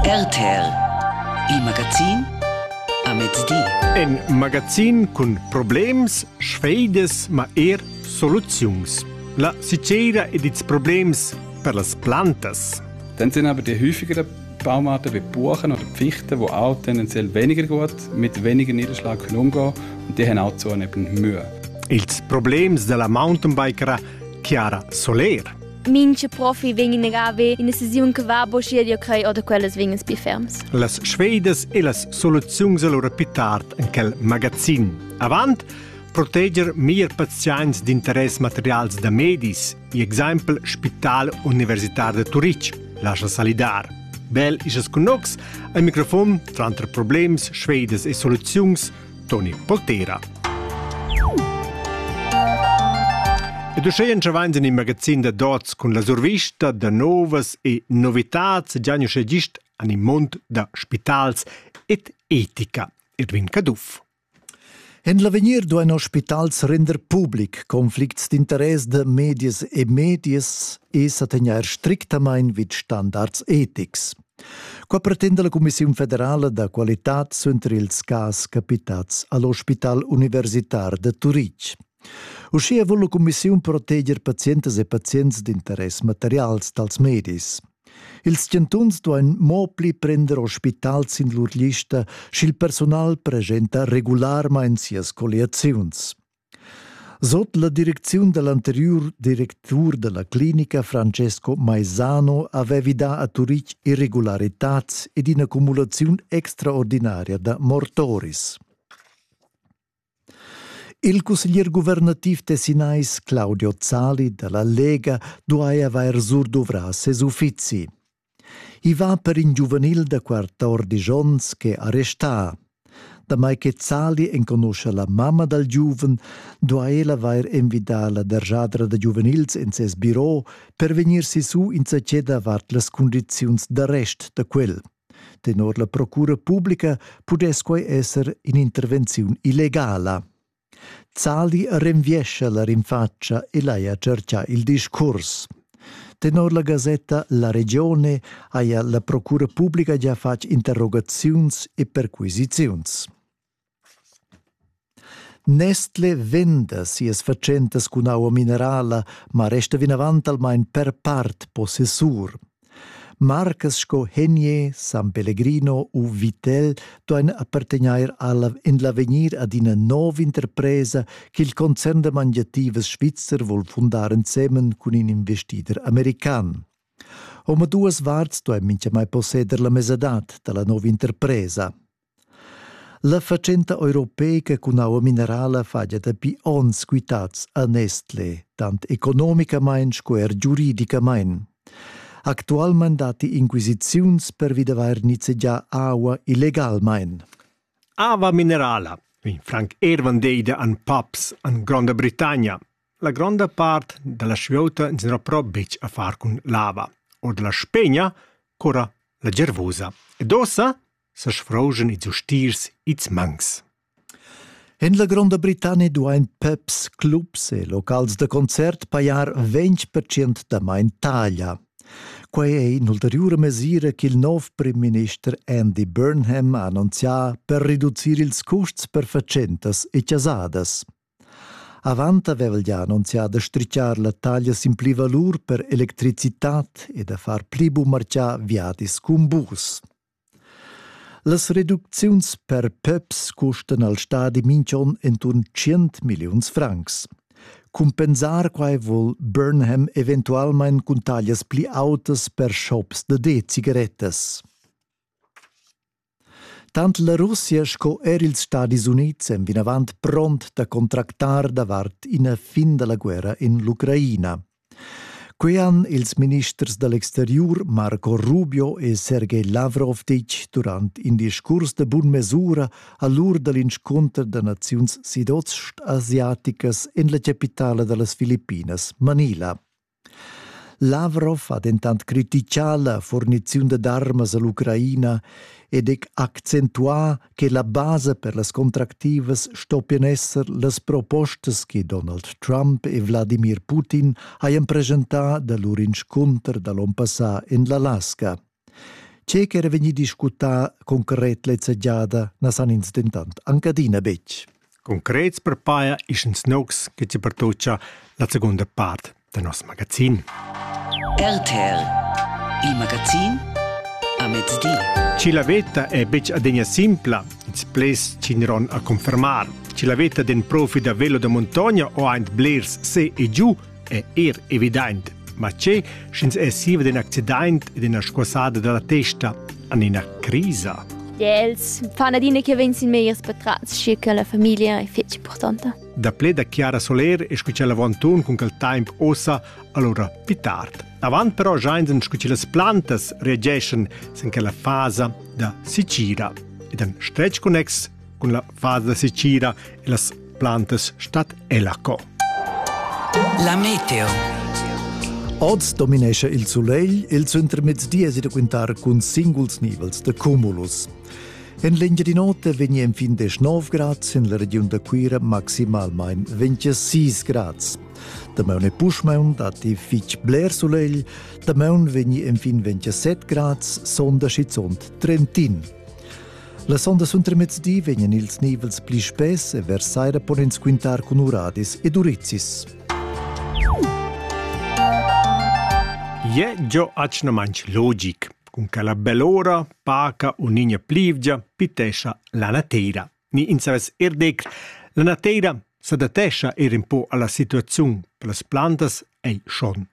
RTL Il magazin a mezdi. In magazin cun problems, sfeidas, ma er soluziuns. La sicera ed ils problems per las plantas. Dann sind aber die häufigeren Baumarten wie Buchen oder Pfichten, die auch tendenziell weniger gut mit weniger Niederschlag können umgehen und die haben auch zunehmend Mühe. Ils problems della mountainbiker Chiara Soler. Minche profi vegn inagave ina sesiun che va bo schier io crei oder quellas vegn spi ferms. Las Schweidas e las soluziuns allora più tard in quel magazin. Avant proteger mir pazients d'interess materials da medis, i exempel Spital Universitar de Turitg, lascia salidar. Bel isas connox, al microfon tranter problems, schweidas e soluziuns Toni Poltera. E duscheien che vains in in magazin da dots cun la survista da novas e novitats gianio sche gist an in mond da spitals et etica Edwin Caduff. En l'avegnir duain ospitals render public conflicts d'interess da medias e medias e sa tegnair strictamain vid standards etics. Qua pretenda la Cumissiun federala da qualitad suenter ils cas capitats all'ospital universitar de Turitg. Uschia vul la Cumissiun proteger pazientas e pazients d'interess materials dals medis. Ils chantuns duain mo pli prender ospital sin lur lista sch'il personal presenta regularmain sias colliaziuns. Sot la direcziun da l'anteriur directur da la clinica Francesco Maisano avevi dà a Turitg irregularitads ed in'accumulaziun extraordinaria da mortoris. Il cusseglier guvernativ tessinais Claudio Zali da la Lega duai avair surduvrà ses uffizi. I va per in giuvenil da quatordisch onns che ha restà. Damai che Sali enconuscha la mamma dal giuven, duha ella vair envidà la derjadra da giuvenils en ses biro per vegnir sisu insatge davart las cundiziuns d'arrest da quel. Tenor la procura publica pudess quai esser in'intervenziun illegala. Zali renviescha la rinfatscha e l'haja tscherchà il discurs. Tenor la gasetta La Regione haja la procura publica gia fatg interrogaziuns e perquisiziuns. Nestle venda sias fatschentas cun aua minerala, ma resta vinavant almain per part possessur. Marcas sco Henier, San Pellegrino u Vittel duein appartegner alla in l'avegnir ad ina nov'interpresa ch'il concern da mangiativas svizzer vul fundar ensemen cun in investider american. Omaduas varts duei mintgamai posseder la mesadad dalla nova interpresa. La fatschenta europeica cun aua minerala fagia dapi onns quitads a Nestlé, tant economicamain sco er giuridicamain. Actualmain datti inquisiziuns pervi d'avair nizzegià aua illegalmain. Aua minerala, wie Frank Ervan deide an pubs an Gronda Britannia. La gronda part da la svieuta n'era però betg a far cun lava, or da la Spegna cura la gervosa. Ed ossa sesfrouschen ils ustiers ils mangs. En la Gronda Britannia duain pubs, clubs e locals da concert pajar 20% damain taglia. Quai è in'ulteriura mesira ch'il nov primminister Andy Burnham ha annunzià per reducir ils custs per fatschentas e chasadas. Avant aveva el ja annunzià da strichar la taglia sin pli valur per electricitad e da far pli bumarcià viadis cun bus. Las reducziuns per peps custan al stadi minch'on inturn tschient milliuns francs. Cumpensar quai voul Burnham eventualmaing cun taglias pli autas per shops da de-cigarettas. Tant la Russia sco eir ils Stadis Units èn vinavant pront da contractar davart ina fin da la guerra in l'Ucraina. Quei han ils ministers da l'exteriur Marco Rubio e Sergej Lavrov ditg durant in discurs de bun mesura a l'ur dall'inscunter da naziuns sidost-asiaticas en la capitala da las Filippinas, Manila. Lavrov ha dentant criticà la furniziun dad armas all'Ucraina ed ha accentuà che la basa per las contractivas stoppien esser las propostas che Donald Trump e Wladimir Putin hajan presentà da lur inscunter da l'on passà en l'Alaska. Ce ch'era vegnì discutà concret lezza giada na san ins dentant anc adina betg. Concrets per paia ischens noucs che ti pertuccia la segunda part da nos magazin. RTL Il magazin a mezdi. Ci la veta è betg adegna simpla, ins ples cineron a confermar. Ci la veta den profi da velo da montogna o aint blers se e giù è er evident. Ma che, sch'ins è siva d'in accident e d'ina squassada da la testa an ina crisa? Els fanno adina che vegns in megliers betrats, schi che la famiglia è fitg importante. Da ple da Chiara Soler e scucel avantun cun quel temp ossa allora più tard. Avant però giainsen scucel las plantas reageschan sin quella fasa da Sicira ed han stretg connex Cun la fasa sicira e las plantas stat ella co. La meteo. Oz dominescha il sulegl ils intermezdies da quintar cun singuls nivels de cumulus. En l'Engiadin'Ota vegni enfin de 9 grads, en la regiun da Cuira maximalmain 26 grads. Damaun e puschmaun datti fitg bler sulegl, damaun vegni enfin 27 grads, sonda schizunt Trentin. La sonda suntermezdi vegnan ils nivels pli spess e vers saira pon ins quintar cun uradis ed urizis. Je jo achna manch logic, cun che la belora paca unigna plivgia pitescha la natera. Ni in saves er dec, la natera s'adattescha er un po alla situaziun, per las plantas ei schon.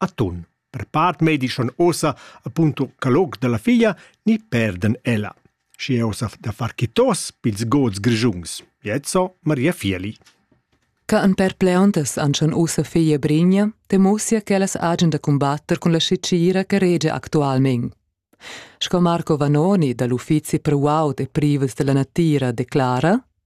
A tun. Per part medi schon ossa appunto calog dalla figlia ni perden ella. Schi è ossa da far chitos pils gods grigiuns. Jetzo Maria Fieli. Ca an perpleontas an schon ossa figlia Brinja, temosia ch'ellas agen da combatter cun la scicira che rege actualment. Sco Marco Vanoni dall'uffizi per uaud e privels della natira declara,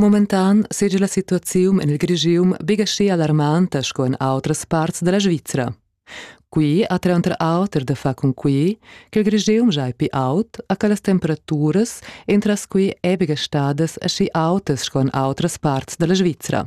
Momentan seja la situaziun en il Grigium bigaschi alarmanta sco en autras parts da la Svizra. Qui ha tranter auter da far cun qui che il Grigium giai pi aut a che las temperaturas entras qui è bigastadas aschi autas sco en autras parts da la Svizra.